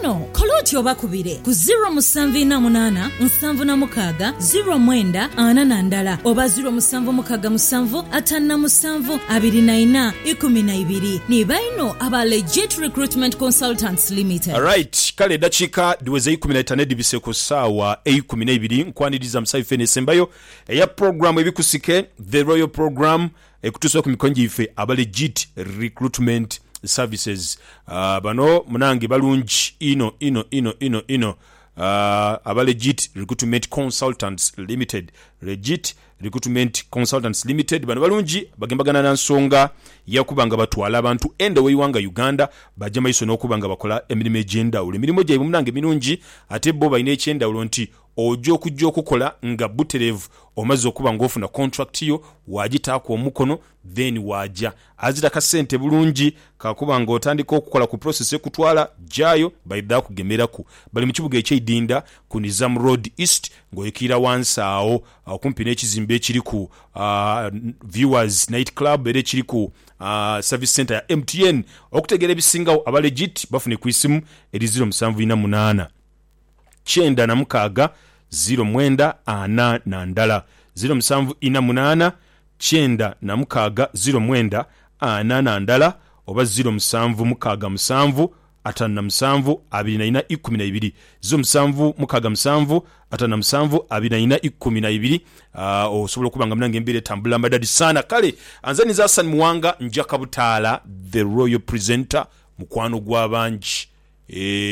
Kano kole oti obakubire ku ziro musanvu ina munana nsanvu na mukaaga ziro mwenda ana na ndala oba ziro musanvu mukaga musanvu atanu na musanvu abiri na ina ikumi na ibiri. Ni baino aba Legit Recruitment Consultants Limited. Right kale edakiika dhiweze eikumi naitanu edhibise ku saawa eikumi neibiri nkwaniriza musaife eno esembayo eya program ebikusike the royal program Ekutuusa ku mikono gyaife aba Legit Recruitment Services. Bano munange balungi inho inho inho inho inho aba Legit Recruitment Consultants Limited, Legit Recruitment Consultants Limited. Bano balungi bagembagana na nsonga ya kuba nga batwala abantu enda w'eighanga Uganda baja maiso n'okuba nga bakola emirimo egy'endhawulo. Emirimo gyaibwe munange mirungi ate bo balina eky'endhawulo nti Oja okuja okukola nga buterevu omaze okuba nga ofuna contract yo wajitaaku omukono then waja azira kasente bulungi kakuba nga otandika okukola ku process ekutwala jayo baidha kugemeraku. Bali mu kibuga ekye Idinda ku Nizam Road East nga oikiira wansi agho okumpi n'ekizimbe ekiriku Viewers Night Club era ekiriku service centre ya MTN. Okutegeera ebisingagho aba legit bafune ku isimu eri ziro musanvu ina munaana. kyenda na mukaaga ziro mwenda ana na ndala ziro musanvu ina munaana kyenda na mukaaga ziro mwenda ana na ndala oba ziro musanvu mukaaga musanvu atanu na musanvu abiri na ina ikumi na ibiri ziro musanvu mukaaga musanvu atanu na musanvu abiri na ina ikumi na ibiri uh, osobola okuba nga munange embeera etambula madadi sana kale anze niza Hassan Muwanga nja kabutaala the royal presenter mukwano gwa bangi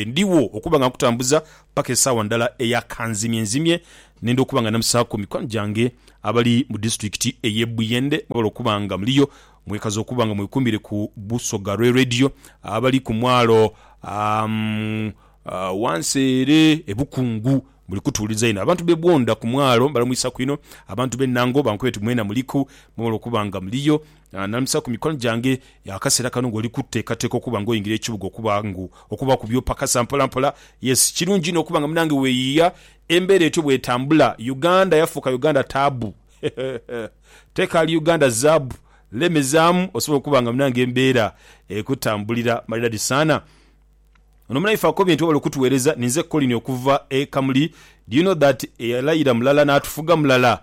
Ndigho okuba nga nkutambuza paka esaawa ndala eya kanzimyenzimye nenda okuba nga namusaaku mikwano gyange abali mu disitulikiti eye Buyende mwebale okuba nga muliyo mwekaza okuba nga mwekumire ku Busoga Rwe Radio abali ku mwalo wansi ere e Bukungu muli kutuwuliriza inho abantu be Bwonda ku mwalo mbalamwisaku inho abantu be Nango bankubira nti mwena muliku mwebale okuba nga muliyo Naananhusa ku mikono gyange. Akaseera kano ng'oli kuteekateeka okuba ng'oyingira ekibuga okuba ngu okuba ku byopakasa mpola mpola. Yes, kirungi inho okuba nga munange weeyiiya. Embeera etyo bw'etambula, Uganda yafuuka Uganda taabu. Tekaali Uganda zaabu. Lemezaamu osobole okuba nga munange embeera ekutambulira maridadi saana. Ono munaife akobye nti webale okutuweereza. Ninze Colin okuva e Kamuli. Do you know that eyalayira mulala n'atufuga mulala?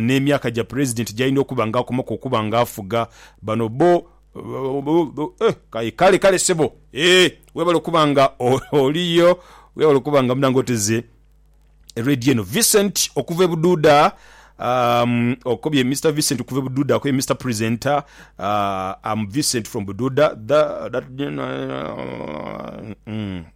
n'emyaka gya Pulezidenti gy'alina okuba nga akomaku okuba nga afuga. Bano bo Aye kale kale ssebo eeh webale okuba nga oliyo webale okuba nga munange oteze Radio eno. Vincent okuva e Bududa umm okobye Mister Vincent okuva e Bududa akobye Mister Presenter umm am Vincent from Bududa da da umm.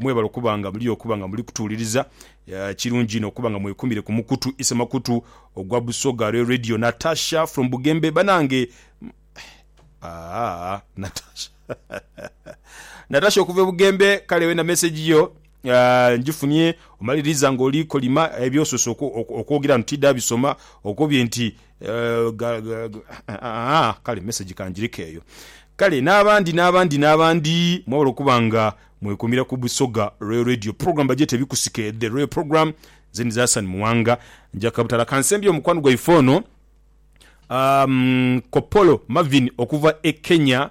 Mwebale okuba nga muli okuba nga muli kutuwuliriza. Kirungi inho okuba nga mwekumire ku mukutu isemakutu ogwa Busoga Rail Radio. Natasha from Bugembe banange Aah Natasha Natasha okuva e Bugembe kale wena message yo njifunye omaliriza nga oli kolima ebyosose okwogera ntidabisoma okobye nti Kale mesegi ka ngireke eyo. Kale n'abandi n'abandi n'abandi mwebale okuba nga mwekuumira ku Busoga Royal Radio. Pulogulaamu bagyeta Ebikusike, The Royal Programme. Nze ndidhi Hassan Muwanga. Nja kabutala kansembyeyo mukwano gwaife ono Kopolo Marvin okuva e Kenya.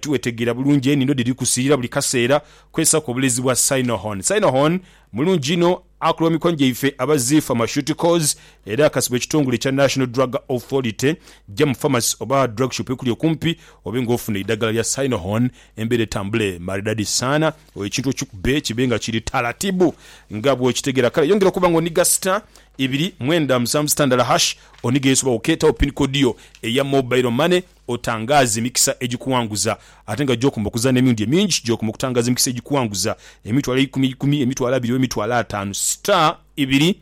Tiwetegeera bulungi enindo dhiri kusiira buli kaseera. Kozesa ku obulezi bwa Cynohorn. Cynohorn mulungi inho, akola mu mikono gyaife aba Zee Pharmaceuticals era akasibwa ekitongole ekya National Drug Authority. Gya mu pharmacy oba drug shop ekuli okumpi obe nga ofuna eidhagala lya Cynohorn embeera etambule maridadi saana. Oyo ekintu okikube kibe nga kiri taratibu nga bw'okitegeera. Kale yongera okuba nga oniga sita ibiri mwenda musanvu sita ndala hash onige yesu oba okeeta wo pin code yo eya mobile money. otangaaze emikisa egikuwanguza. Ate nga gy'okomba okuza n'emirundi emingi, gy'okomba okutangaaza emikisa egikuwanguza, emitwalo eikumi eikumi, emitwalo abiri oba emitwalo ataanu, star ibiri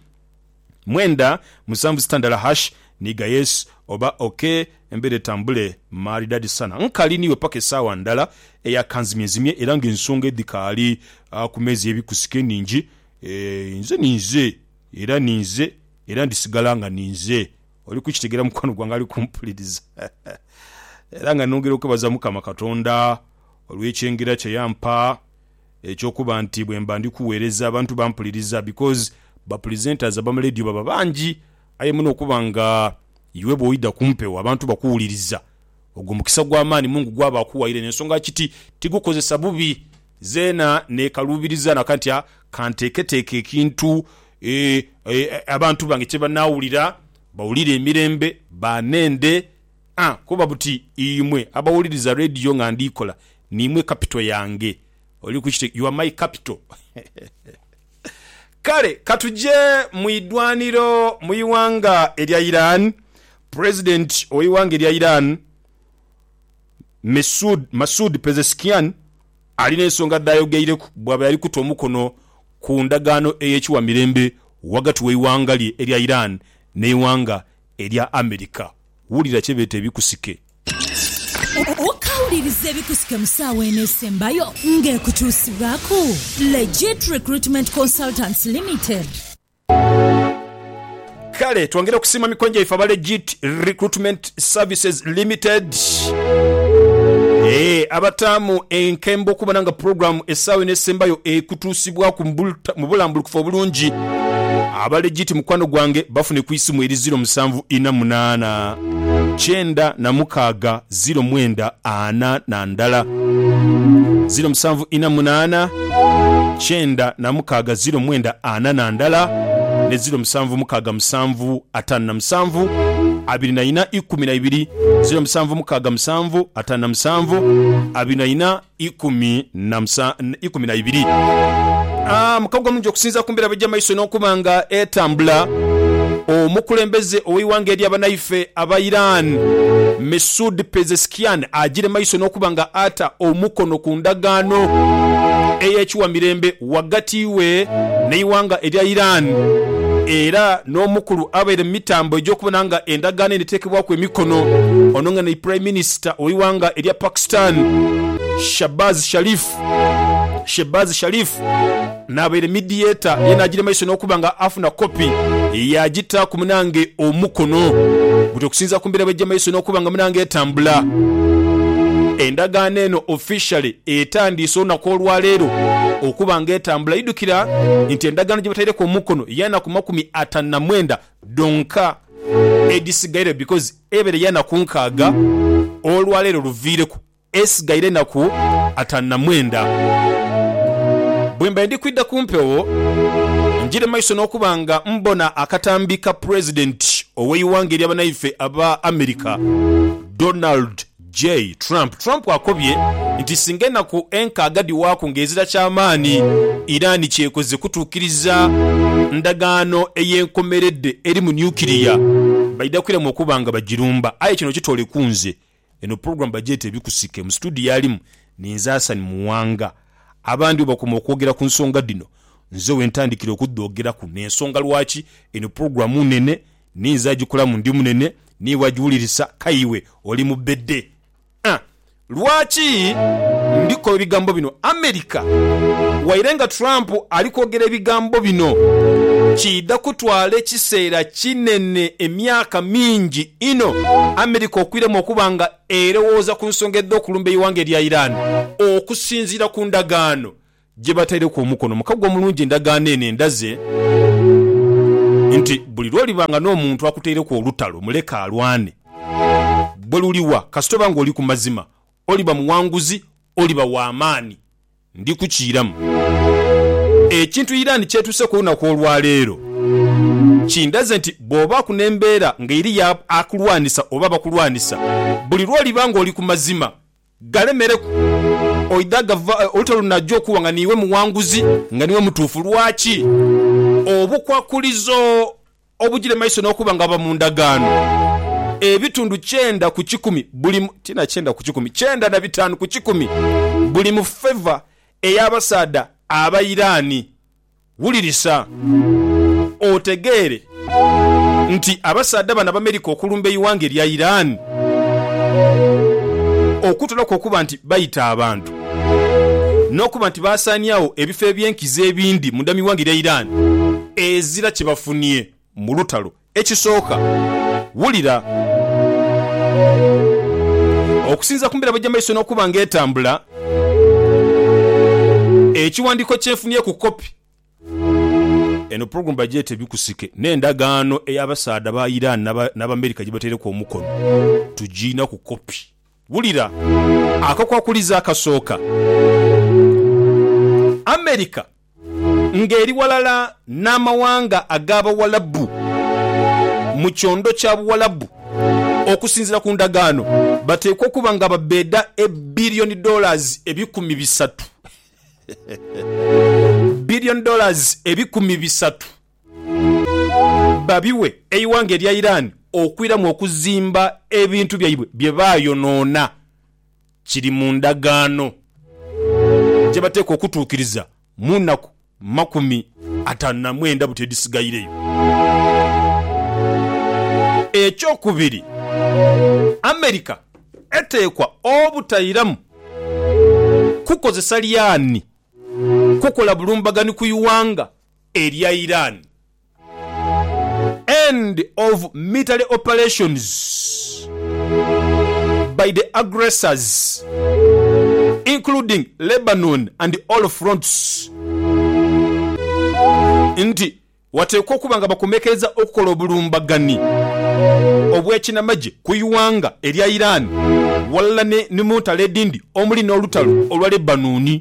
mwenda musanvu sita ndala hash niiga yes oba ok embeera etambule maridadi sana. Nkali niiwe paka esaawa ndala eya kanzimyenzimye era nga ensonga edhikaali ku meeza ey'ebikusike nhingi. Eeh, inze ninze era ninze era ndisigala nga ninze Oli kukitegera mukwano gwange ali kumpuliriza era nga nongera okwebaza mukama katonda olwekyengera kyeyampa ekyokuba nti bwemba ndi kuwereza abantu bampuliriza because ba presenters abama ledio baba bangi aye muno okuba nga iwe bwoida kumpewo abantu bakuwuliriza Ogwo mukisa ogw'amaani Mungu gwaba akuwaire n'ensonga kiti tigukozesa bubi. Zeena neekaluubiriza na kati nti kanteeketeeke ekintu abantu bange kye banaawulira, bawulire emirembe, baanende. A Kuba buti imwe abawuliriza leediyo nga ndiikola, niimwe kapito yange. Oli ku kiti? You are my capital. Kale ka tuje mu idwaniro mu ighanga erya Iran. Pulezidenti ow'eighanga erya Iran, Mesud, Masoud Pezeshkian ali n'ensonga dh'ayogeireku bw'abaire ali kuta omukono ku ndagaano ey'ekiwa mirembe ghagati w'eighanga lye erya Iran n'eighanga erya America. Wulira kye beeta ebikusike. Okawuliriza ebikusike mu ssaawa eno esembayo ng'ekukyusibwaku? Legit Recruitment Consultants Limited. Kale twongere okusiima mikono gyaife aba Legit Recruitment Services Limited eeh abataamu enkembo okubona nga pulogulaamu essaawa eno esembayo ekutuusibwaku mu bulambulukufu obulungi. Aba Legit mukwano gwange bafune ku isimu eri ziro musanvu ina munaana. kyenda na mukaaga ziro mwenda ana na ndala ziro musanvu ina munaana kyenda na mukaaga ziro mwenda ana na ndala ne ziro musanvu mukaaga musanvu ataanu na musanvu abiri na ina ikumi na ibiri ziro musanvu mukaaga musanvu ataanu na musanvu abiri na ina ikumi na musa, ikumi na ibiri. A. Mukago omulungi okusinzira ku mbeera bwegya maiso n'okuba nga etambula, omukulembeze ow'eighanga erya banaife aba Iran, Mesud Pezeshkian agire maiso n'okuba nga ata omukono ku ndagaano ey'ekiwa mirembe. ghagati we n'eighanga erya Iran era n'omukulu abaire mu mitambo egy'okubona nga endagaano eno eteekebwaku emikono ono nga ni Prime Minister w'eighanga erya Pakistan Shahbaz Sharif Shehbaz Sharif n'abaire mediator ye n'agira maiso n'okuba nga afuna kopi yaagitaaku munange omukono but okusinziira ku mbeera bw'eggya maiso n'okuba nga munange etambula endagaano eno officially etandiise olunaku olwaleero okuba nga etambula. Idhukira nti endagaano gyebataireku omukono yanaku makumi atanu na mwenda dhonka edhisigaire because ebeere yanaku nkaaga olwaleero luviireku esigaire enaku atanu na mwenda. Bwembaire ndi kwidha ku mpewo njire maiso nokuba nga mbona akatambi ka president oweighanga eryabanaife aba America Donald Jay Trump Trump akobye nti singa enaku enkaaga dhiwaaku nga ezira kyamaani, Iran kyekoze kutuukiriza ndagaano ey'enkomeredde eri mu nuclear, baidha kwiramu okuba nga bagirumba aye kino kitoole ku nze. Eno pulogulaamu bagyeta Ebikusike. Mu situdiyo alimu ninze Hassan Muwanga. Abandi bwebakoma okwogera ku nsonga dhino, nze wentandikira okudhoogeraku n'ensonga lwaki eno pulogulaamu nnene Ni nze agikulamu, ndi munene, niiwe agiwulirisa, k'aye iwe oli mubede. A Lwaki ndi koba ebigambo bino? America, waire nga Trump ali kwogera ebigambo bino, kiidha kutwala ekiseera kinene, emyaka mingi inho, America okwiremu okuba nga erowooza ku nsonga edh'okulumba eighanga erya Iran okusinziira ku ndagaano gye bataireku omukono mu kaggwa omulungi endagaano eno endaze nti buli lw'oliba nga n'omuntu akutaireku olutalo muleke alwane. Bwe luliwa, kasita oba ng'oli ku mazima, oliba muwanguzi, oliba wa maani. Ndi kukiiramu. Ekintu Iran ky'etuuseeku olunaku olwa leero kindaze nti bw'obaaku n'embeera ng'eriyo akulwanisa oba abakulwanisa, buli lw'oliba ng'oli ku mazima, galemereku oidha gava oluta lunajja okuwa nga niiwe muwanguzi, nga niiwe mutuufu. Lwaki? Obukwakulizo obugire mu maiso n'okuba nga buba mu ndagaano, ebitundu kyenda ku kikumi buli mu, ti na kyenda ku kikumi, kyenda na bitaanu ku kikumi buli mu favour ey'abasaadha Abairaani. Wulirisa otegeere nti abasaadha bano Abamerika okulumba eighanga erya Iran okutoolaku okuba nti baita abantu n'okuba nti baasaaniagho ebifo eby'enkizo ebindi munda mu ighanga erya Iran, ezira kye bafunie. mu lutalo. Ekisooka, wulira. Okusinziira ku mbeera bw'eja mu maiso n'okuba nga etambula, ekiwandiiko kye nfunye ku kopi. Eno pulogulaamu bagyeta Ebikusike n'endagaano ey'abasaadha ba Iran n'Abamerica gye bataireku omukono. Tugiina ku kopi. Wulira akakwakulizo akasooka. America Ng'eri ghalala n'amawanga ag'Abawalabu mu kyondo kya Buwalabu, okusinziira ku ndagaano, bateekwa okuba nga babbeeda e billion dollars ebikumi bisatu. Billion dollars ebikumi bisatu babiwe eighanga erya Iran okwiramu okuzimba ebintu byaibwe bye baayonoona Kiri mu ndagaano gye bateekwa okutuukiriza mu naku makumi ataanu na mwenda buti edhisigaireyo. Ekyokubiri, America eteekwa obutairamu kukozesa lyani kukola bulumbaganhi ku ighanga erya Iran End of military operations by the aggressors including Lebanon and all fronts nti wateekwa okuba nga bakomekereza okukola obulumbaganhi obw'ekinamagye ku ighanga erya Iran ghalala ni mu ntalo edhindi omuli n'olutalo olwa Lebanon.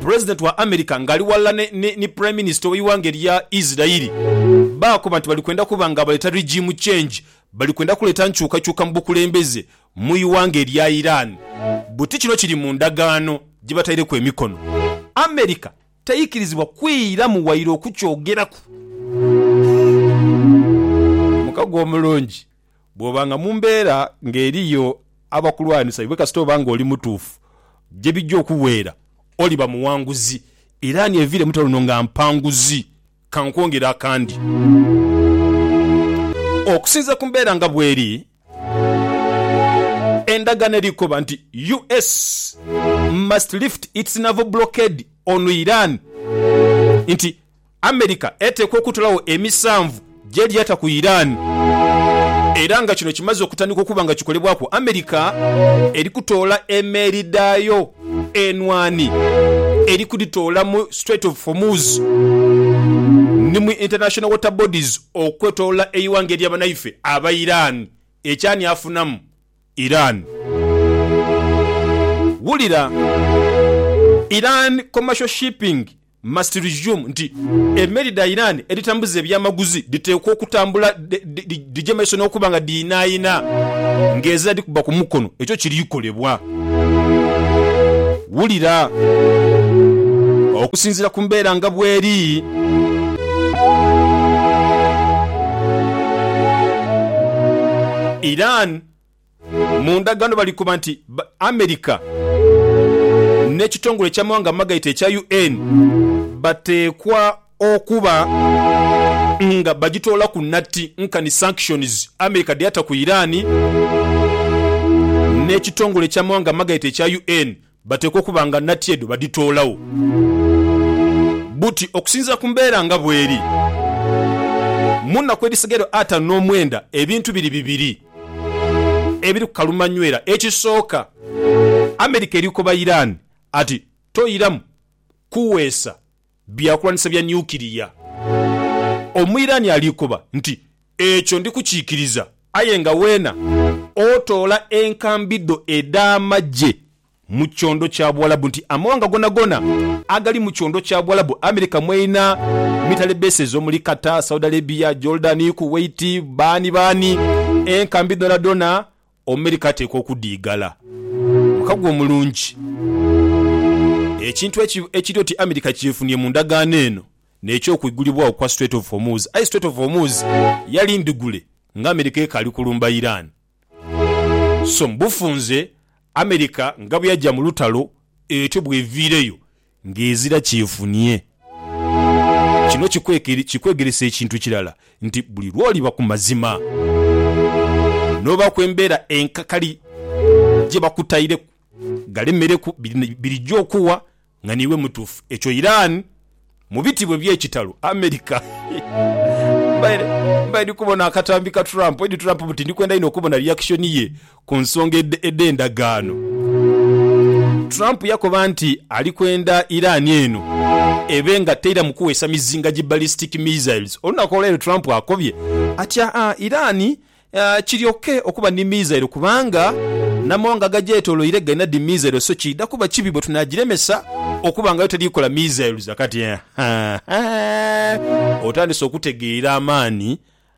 President wa America nga ali ghalala ni ni Prime Minister we ighanga elya Israeli baakoba nti bali kwenda kuba nga abaleeta regime change, bali kwenda kuleeta nkyukakyuka mu bukulembeze mu ighanga elya Iran buti kino kiri mu ndagaano gye bataireku emikono. America teikirizibwa kwiiramu waire okukyogeraku. Mukago omulungi. Bw'oba nga mu mbeera ng'eriyo abakulwanisa iwe kasita oba ng'oli mutuufu, gye bijja okuweera oliba muwanguzi. Iran eviire mu lutalo luno nga mpanguzi. Ka nkwongere akandi. Okusinziira ku mbeera nga bw'eri, endagaano eri kukoba nti US must lift its naval blockade on Iran nti, America eteekwa okutolawo emisanvu gyeli ata ku Iran era nga kino kimaze okutandika okuba nga kikolebwaku. America eri kutoola emeeri dhaayo enhwani eri kudhitoola mu Strait of Hormuz ni mu International Water Bodies okwetolola eighanga erya banaife aba Iran. Ekyo ani afunamu? Iran. Wulira! Iran Commercial Shipping. Must resume nti emeli dha Iran edhitambuza ebyamaguzi dhiteekwa okutambula dhije maiso n'okuba nga dhiinaayina ng'ezira dhikuba ku mukono. Ekyo kiri kolebwa. Wulira. Okusinziira ku mbeera nga bweri. Iran. Mu ndagaano balikoba nti America n'ekitongole eky'amawanga amagaita ekya UN bateekwa okuba nga bagitoolaku natti nkani sanctions America dheyata ku Iran n'ekitongole eky'amawanga amagaita ekya UN Bateekwa okuba nga nati edho badhitoolagho buti okusinziira ku mbeera nga bweri. Mu naku edhisigaire ataanu n'omwenda ebintu biri bibiri ebiri ku kalumanywera. Ekisooka, America eri koba Iran ati toiramu kuweesa. Byakulwanisa bya Nyukiriya. Omuiraani alikoba nti, Ekyo ndi kukikiriza. Aye nga weena otoola enkambi dho edh'amagye mu kyondo kya Buwalabu nti amawanga goonagoona agali mu kyondo kya Buwalabu, America mweinha mitale bases omuli Qatar, Saudi Arabia, Jordan, Kuwait, baani baani, enkambi dhoonadhoona Omumerika ateekwa okudiigala mukago omulungi. Ekintu ekiri oti Amerika kyefunie mu ndagaano eno n'eky'okwigulibwagho kwa Strait of Hormuz. Aye Strait of Hormuz yali ndhigule nga Amerika ekaali kulumba Iran. So mu bufunze, Amerika nga bweyaja mu lutalo etyo bweviireyo Ng'ezira kyefunie. Kino kikwegeresa ekintu kirala nti buli lw'oliba ku mazima n'obaaku embeera enkakali gye bakutaireku galemereku, birija okuwa nga niiwe mutuufu. Ekyo Iran mu bitibwa eby'ekitalo America. Mbaire ndi kubona akatambi ka Trump, Edi Trump, buti ndi kwenda inho okubona reaction ye Ku nsonga edh'endagaano, Trump yakoba nti ali kwenda Iran eno ebe nga teiramu kuweesa mizinga gi ballistic missiles. Olunaku olwaleero Trump akobye atya Iran kiryoke okuba ni misailo kubanga n'amawanga agagyetoloire galina dhi misailo so kiidha kuba kibi bwe tunaagiremesa okuba nga yo teri kukola missiles. Kati otandise okutegeera amaani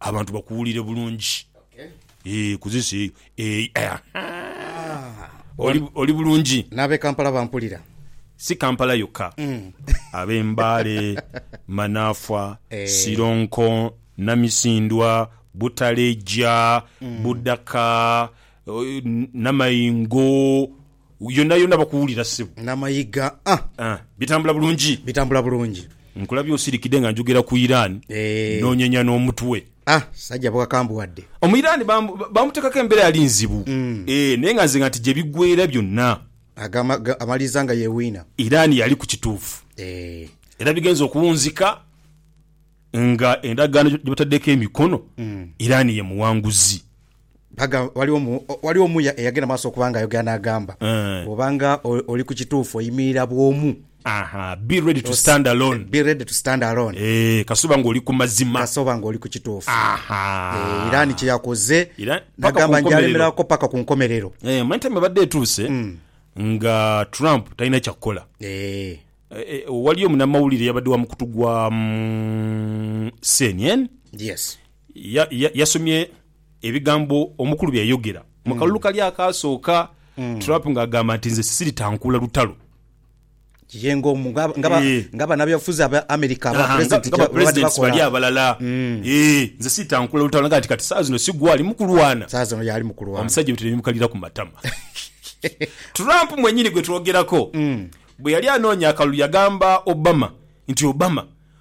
Abantu bakuwulire bulungi eeh ku this eyo eeh ahaa oli oli bulungi. N'ab'e Kampala bampulira. Si Kampala yokka, ab'e Mbale, Manafwa, Sironko, Namisindwa, Butaleja, Budaka, Namayingo, Yonayona bakuwulira ssebo. Nga mayiga a. Ah, bitambula bulungi? Bitambula bulungi. Nkulabye osirikidde nga njogera ku Iran n'onyenya n'omutwe. Ah, sajja bwakambuwadde. Omu Iran bamuteekako embeera yali nzibu eh, naye nga nze nga nti gye biggweera byonna. Agamba amaliriza nga yewiina. Iran yali ku kituufu era bigenze okuwunzika nga endagaano gye bataddeko emikono, Iran ye muwanguzi. Aga, waliwo mu, waliwo omuya eyagenda maaso okuba nga ayogera n'agamba, Eh. Bw'oba nga o- oli ku kituufu, oyimirira bwomu. Aha, be ready to stand alone. Be ready to stand alone. Eh, kasita oba nga oli ku mazima. Kasita oba nga oli ku kituufu. Aha. Eh, Iran kye yakoze, Iran- paka ku n'agamba nti nkomerero. alemerako paka ku nkomerero. Eh, omanyi time ebadde etuuse nga Trump talina kyakukola. Eh, Eh, eh, waliyo munamawulire yabadde wa mukutu gwa mm, CNN yes. Yasomye ebigambo omukulu bye yayogera mu kalulu kali akaasooka, Trump ng'agamba nti nze siritankuula lutalo. Ye ng'omu nga banabyabufuzi aba America aba pulezidenti kyebabadde bakola abalala. Nze siritankuula lutalo nagamba nti kati saawa zino si gwali mu kulwana. Saawa zino y'ali mu kulwana. Omusajja ebitone ne bimukalira ku matama. Trump mwennyini gwe twogerako bwe yali anoonya akalulu yagamba Obama nti, Obama,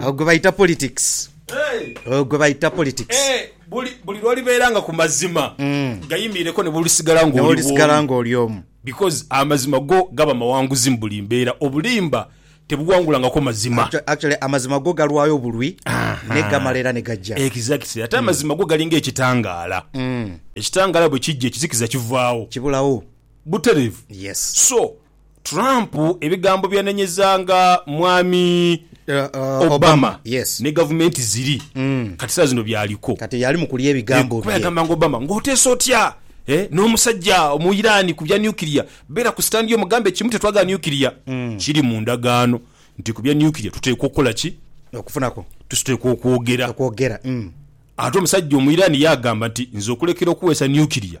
Agho gwe baita politics. Ogho gwe baita politics. Buli lw'olibeera nga ku mazima gayimiireko ne bw'olisigala ng'oli omu. Because amazima go gaba mawanguzi mu buli mbeera. Obulimba tebuwangulangako mazima. Actually amazima go galwayo bulwi naye gamala era ni gaja. Exactly. Ate amazima go galinga ekitangaala. Ekitangaala bwe kija ekizikiza kivaawo. Kibulawo. Butereevu. Yes. So Trump ebigambo byanenyeza nga Mwami Obama ni gavumenti ziri kati saa zino byaliko. Kuba yagamba nga Obama nga oteesa otya n'omusajja omu Iran ku bya nuclear, beera ku stand yo omugambe kimu tetwagala nuclear. Kiri mu ndagaano nti ku bya nuclear tuteekwa okukola ki? Tuteekwa okwogera. Ate omusajja omu Iran yaagamba nti nze okulekera okuweesa nuclear,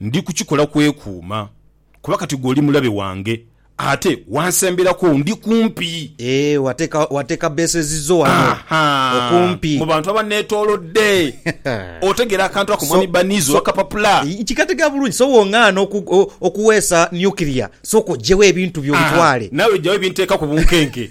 Ndi kukikola kwekuuma, kuba kati gwe oli mulabe wange, ate wansemberaku, ndi kumpi. Eeh, wateeka bases zo wano okumpi. Mu bantu abanneetoolodde. Otegeera akantu ako Mwami Barniz ow'akapapula? Nkikategeera bulungi. So bw'ong'aana okuweesa nuclear, sooka oggyewo ebintu byo obitwale. Naawe ggyawo ebinteeka ku bunkenke.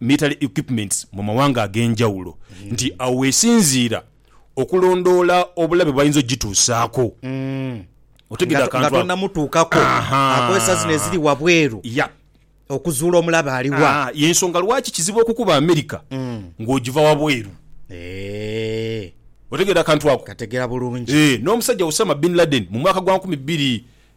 military equipments mu mawanga ag'enjawulo nti awo wesinziira okulondoola obulabe bwayinza ogituusaako. Otegedde akantu ako? Nga tonamutuukako, akozesa zino eziri wabweru okuzuula omulabe ali wa. Y'ensonga lwaki kizibu okukuba America ng'ogiva wabweru. Otegedde akantu ako? N'omusajja Osama Bin Laden mu mwaka gwa nkumi bbiri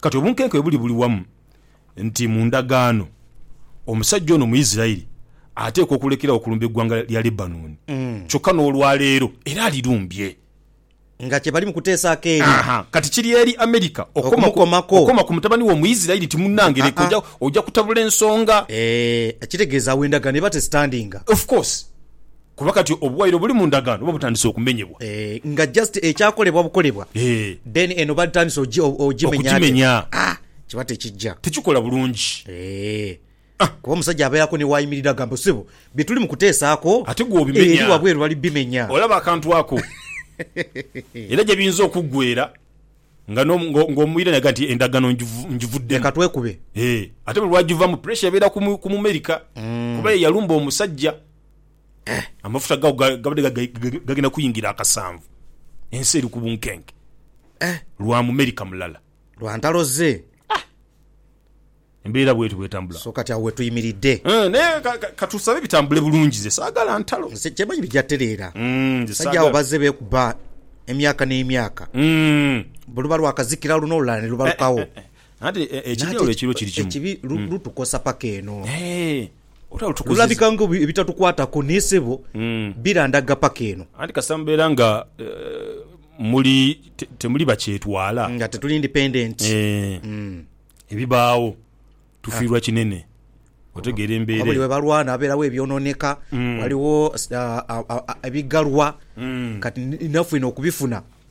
Kati obunkenke bwe buli buli wamu nti mu ndagaano omusajja ono Muisiraeli ateekwa okulekeragho okulumba eggwanga lya Lebanoni, kyokka n'olwa leero era alirumbye. Nga kye bali mu kuteesaako eri. Haa, kati kiri eri Amerika okukoma ku mutabani wo Muisiraeli nti munnange leka oja kutabula ensonga. Eeh, kitegeeza agho endagaano eba tesitandinga. Of course. Kuba kati obuwaire obuli mu ndagaano buba butandise okumenyebwa. Eeh nga just ekyakolebwa bukolebwa then eno batandise ojimenya ate aah kiba tekijja. Tekikola bulungi. Eeh kuba omusajja abeeraku ni wayimirira agamba sebo byetuli mu kuteesaako eri wabweru bali bimenya. Olaba akantu ako era gyebiyinza okuggwera nga nga omuwire naga nti endagaano njivuddemu. Leka twekube. Eeh ate buli lwajivamu pressure ebeera ku mumerika kuba ye yalumba omusajja Amafuta gaago gabadde gagenda kuyingira akasanvu, ensi eri ku bunkenke lwa mumerika mulala. Lwa ntalo ze. Embeera bw'etyo bw'etambula. So kati agho we tuyimiridde. Naye ka tusabe bitambule bulungi. Nze saagala ntalo. Nze kye manyi bigya tereera. Abasajja abo bazze beekuba emyaka n'emyaka. Buluba lwakazikira luno olulala ne lubalukagho. Nanti ekibi lutukosa paka eno. Lulabika nga ebitatukwataku ni sebo birandaga paka eno. Anti kasita mubeera nga muli temuli bakyetwala. Nga tetuli independent. Ebibaawo tufiirwa kinene. Otegeera embeera eyo. Kuba buli webalwana wabeerawo ebyononeka, waliwo ebighalwa kati naifwe eno okubifuna.